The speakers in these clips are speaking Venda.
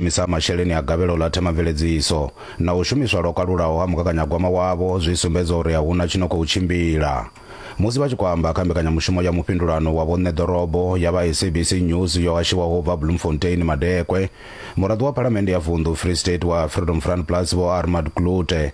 shumisa ha masheleni a gavhelo ḽa themamveledziso na u shumiswa lwo kalulaho ha mugaganyagwama wavho zwi sumbedza uri a hu na tshi no khou tshimbila. Musi vha tshi khou amba kha mbekanyamushumo ya mufhindulano wa vhoṋe ḓorobo ya vha SABC News yo hashiwaho u bva Bloemfontein, Madekwe, muraḓo wa Phalamennde ya Vunḓu Free State wa Freedom Front Plus Vho Armad Klute,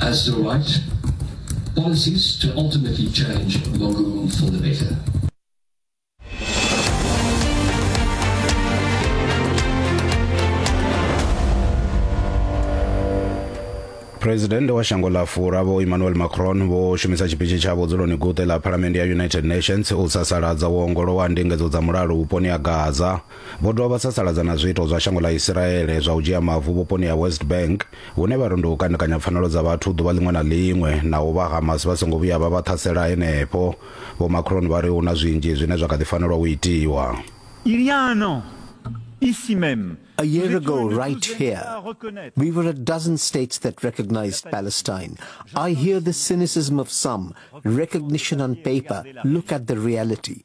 as the right policies to ultimately change Mogu for the better. president wa shango ḽa fura vho emmanuel macron vho shumisa tshipitshi tsha vhudzuloni guṱe ḽa phalamende ya united nations u sasaladza u ongolowa ndingedzo dza mulalo vhuponi ha gaza Vho dovha vha sasaladza na zwiito zwa shango ḽa Isiraele zwa u dzhia mavu vhuponi ha West Bank hune vha ri ndi u kandekanya pfanelo dza vhathu ḓuvha ḽiṅwe na ḽiṅwe naho vha Hamas vha songo vhuya vha vha ṱhasela henefho. Vho Macron vha ri hu na zwinzhi zwine zwa kha ḓi fanelwa u itiwa. Il y a un an, ici même, A year ago, right here, we were a dozen states that recognized Palestine. I hear the cynicism of some, recognition on paper, look at the reality.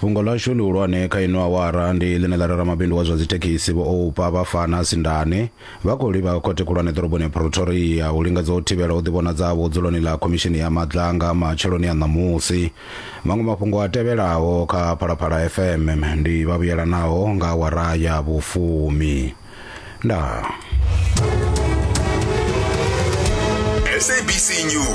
fhungo ḽashu ḽihulwane kha ino awara ndi ḽine ḽa rera mabindu wa zwa dzithekhisi vho oupa vha fana sindane vha khou livha khothe khulwane ḓoroboni ya pretoria u lingedza u thivhela u ḓivhonadza havho dzuloni ḽa khomishini ya madlanga matsheloni a ṋamusi maṅwe mafhungo a tevhelaho kha phalaphala fm ndi vhavhuyelanaho nga awara ya vhufumi ndaa sabc news